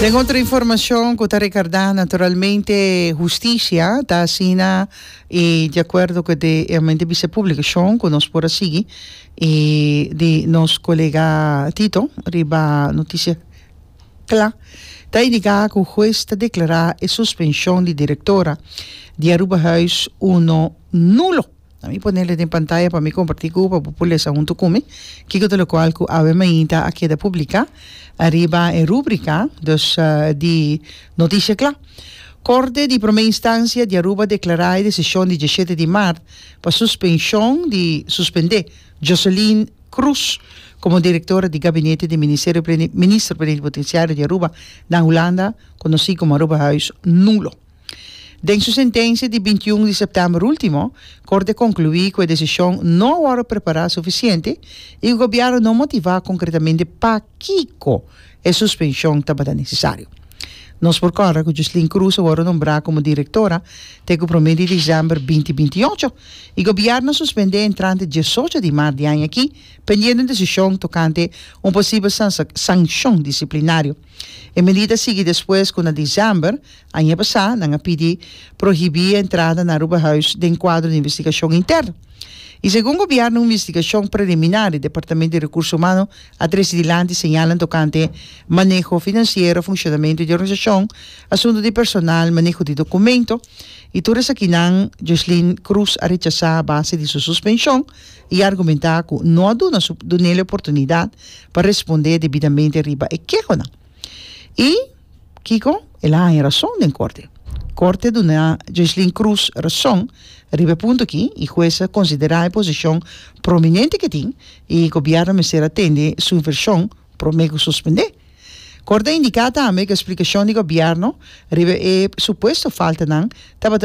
Den otro informacion cu ta recarda naturalmente husticia ta asina y de acuerdo cu e amente bisa publicacion cu nos por a sigui y di nos colega Tito riba noticia cla ta indica cu huez ta declara e suspension di directora di Aruba Huis uno nulo. Na mi ponele den pantaya pa mi comparti cu u pa bo por lesa hunto cu mi kico ta locual cu Ave Mainita a keda publica ariba e rubrica dos di noticia cla. Corte di Prome Instancia di Aruba declara e decision di diesshete di maart pa suspension di suspende Joseline Croes como Directora di Gabinete den Ministerio Minister Plenipotenciario di Aruba, Dan Hulanda, conoci como Aruba Huis, nulo. Den su sentencia di binti i un di september ultimo, Corte conclui cu e decision no a worde prepara suficiente y cu Gobierno no motiva concretamente pakico e suspension tabata necesario. Nos por corda cu Jocelyn Cruz a worde nombra como directora te cu prome di december binti binti ocho y Gobierno a suspende entrante diesocho di maart di aña aki pendiendo un decision tocante un posible sancion disciplinario E medida sigui despues cu na diciember aña pasá nan a pidi prohibí e entrada na Aruba Huis den cuadro di investigacion inter. Y segun gobierno un investigacion preliminar di Departamento di Recurso Humano a trece dilanti señalan tocante maneho financiero, funcionamento di organisacion, asunto di personal, maneho di documento y tur esakinan Joslin Cruz a rechasá a base di su suspension. I argumentá ku no a duna su dunele oportunidat pa respondé debidamente riba e kehonan. I kiko? El a haña rason den korte. Korte a duna Joycelyn Cruz rason riba e punto aki i hues a konsiderá e posishon prominente ku e tin i gobièrnu mester a tende su invershon promé ku suspendé. Korte a indiká tambe ku e splikashon di gobièrnu riba e supuesto faltanan tabata